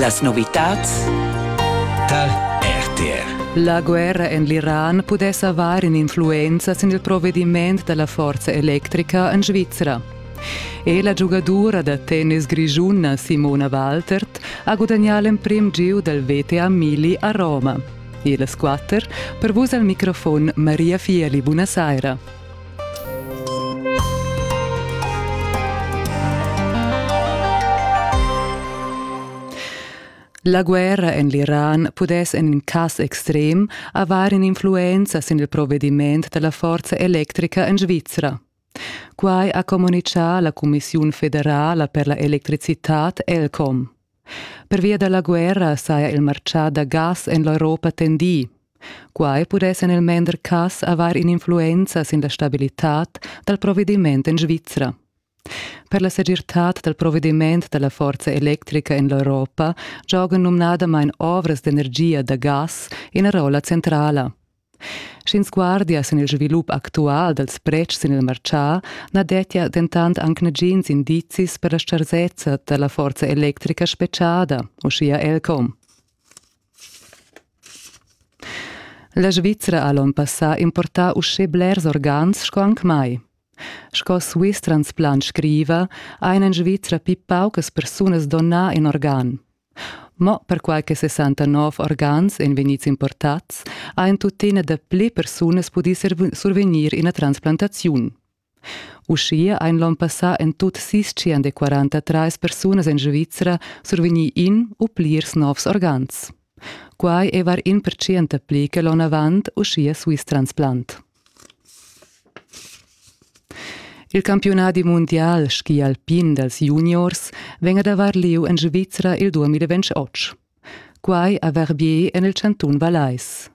Las novitads tar RTR. La guerra en l'Iran pudess avair in'influenza sin il provediment da la forza electrica en Svizra. E la giugadura da tennis grischuna Simona Waltert ha gudagnà l'emprim giu dal VTA Mili a Roma. E las quatter, per vus al microfon Maria Fieli, buonasera. La guerra en l'Iran pudess en in cas extrem avair in'influenza sin il provediment da la forza electrica en Svizra. Quai ha communitgà la Cumissiun federala per la electricitad ELCOM. Pervia da la guerra saja il martgà da gas en l'Europa tendì. Quai pudess en il mender cass avair in'influenza sin la stabilitad dal provediment en Svizra. Per la segirtad dal provediment da la forza electrica en l'Europa giogan numnadamain ovras d'energia da gas ina rolla centrala. Sch'ins guardia sin il svilup actual dals pretschs sin il martgà, na dettia dentant anc nagins indizis per la stgarsezza da la forza electrica spetgada, uschia Elcom. La Svizra ha l'onn passà importà uschè blers organs sco anc mai. Sco Swiss Transplant scriva, ha en Svizra pli paucas persunas donà in organ. Mo perquai che 69 organs ein vegnids importats, ha en tuttina dapli persunas pudì survegnir ina transplantaziun. Uschia ein l'onn passà en tut sis tschien de 43 persunas en Svizra survegni in u plirs novs organs. Quai è var in percent pli che l'onn avant, uschia Swiss Transplant. Il campiunadi mundial ski alpin dals juniors vegn ad avair lieu en Svizra il 2028. Quai a Verbier en il chantun Vallais.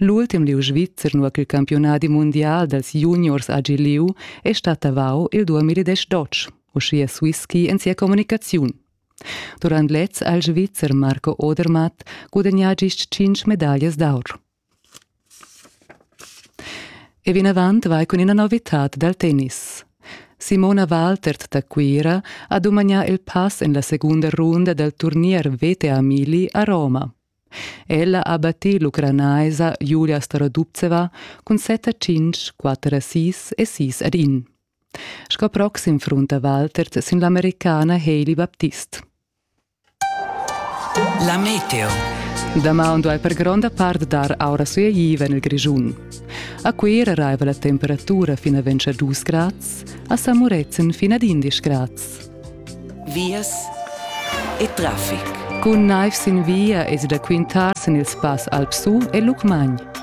L'ultim lieu svizzer nua ch'il campiunadi mundial dals juniors ha gi lieu è stat Tavau il 2018, uschia Swisski en sia communicaziun. Durant lez ha il Svizzer Marco Odermatt gudagnà gist cinc medaglias d'aur. E vinavant vai cun ina novitad dal tennis. Simona Waltert da Cuira ha dumagnà il pass en la segunda runda dal turnier VTA Mili a Roma. Ella ha battì l'ucranaisa Julia Starodubtseva cun set a cinc, quatter a sis e sis ad in. Sco proxim frunta Waltert sin l'americana Hailey Baptist. La meteo. Damaun duai per gronda part dar aura sueiva en il Grischun. A Cuira raiva la temperatura fin a ventscha 2 grads, a San Murezzan fin ad 11 grads. Vias e traffic. Cun naiv sin via esi da quintar sin il spass Alp Su e Lucmagn.